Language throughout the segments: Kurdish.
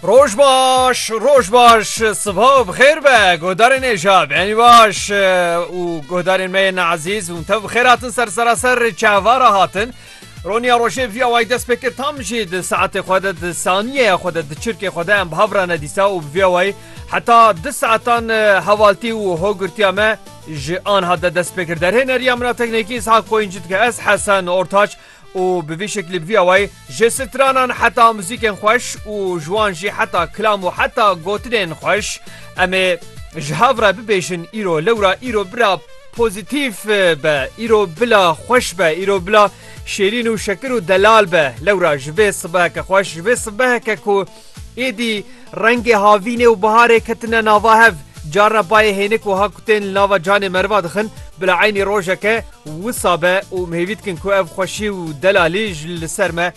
Roj baş, roj baş, sıbha bixêr be, godarên êja beni baş û godarên me yên ezîz hûn tev bixêr hatin ser seraser çavara hatin. Roniya rojê vîya way dest pê kir tam jî di saetê xwe de di saniyeya xwe de di çirkê xwe de em bi hev re nedîsa û bi vîya wayî heta di saetan hevaltî û hogirtiya me ji anha de dest pê kir derhê neriya min a teknekî Ishak Qoyîncî dike ez Hesen Ortaç û bi vî şeklî bi vî awayî ji stranan heta muzîkên xweş û ji wan jî heta kilam û heta gotinên xweş em ê ji hev re bibêjin îro lewra îro bira pozîtîf be îro bila xweş be îro bila şêrîn û şekir û delal be lewra ji vê sibeheke xweş ji vê sibeheke ku Êdî rengê havînê û biharê ketine nava hev. Car re bayê hênik wiha kutên li nava canê meriva dixin, bila eynî rojek e wisa be û em hêvî dikin ku ev xweşî û delalî ji li ser me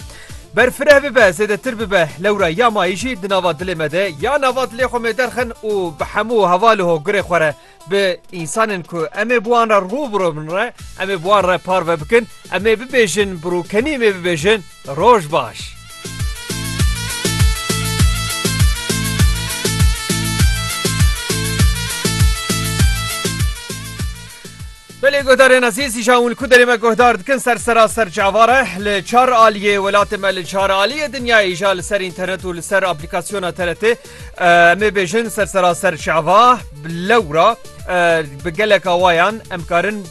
ber fireh bibe, zêdetir bibe. Lewra ya mayî jî di nava dilê me de ya nava dilê xwe mêderxin û bi hemû heval û hogirê xwe re. bi însanên ku em ê bi wan re rû bi rû bin re, em ê bi wan re parve bikin, em ê bibêjin bi rûkenî em ê bibêjin roj baş. Belê guhdarên ezîz îja hûn ku derê me guhdar dikin ser seraser çavar e. Li çar aliyê welatê me li çar aliyê dinyayê îja li ser înternet û li ser aplîkasyona TRT Em ê bêjin ser seraser çava lewra bi geleka wayan em karin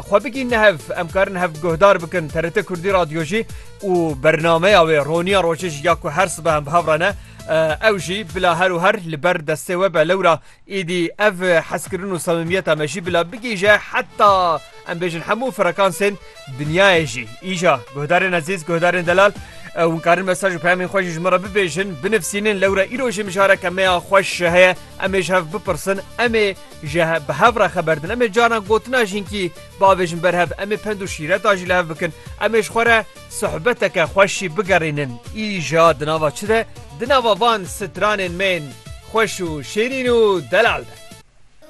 xwe bigîn ne hev em karin hev guhdar bikin TRT Kurdî radyo jî û bernameya wê roniya rojê jî ya ku her sibe em bi hev re ne ew jî bila her û her li ber destê we be lewra Êdî ev hezkirin û samimiyeta me jî bila bigihîje heta em bêjin hemû frekansên dinyayê jî. Îja guhdarên ezîz, guhdarên delal, hûn karin mesaj û peyamên xwe jî ji min re bibêjin, binivîsînin. Lewra îro jî mijareke me ya xweş heye, em ê ji hev bipirsin, em ê ji bi hev re xeberdin, em ê caran gotina jînkî biavêjin ber hev, em ê pend û şîreta jî li hev bikin, em ê ji xwe re. Sohbeteke xweş jî bigerînin îja di nava çi de? Di nava van stranên mêin xweş û şêrîn û delal de.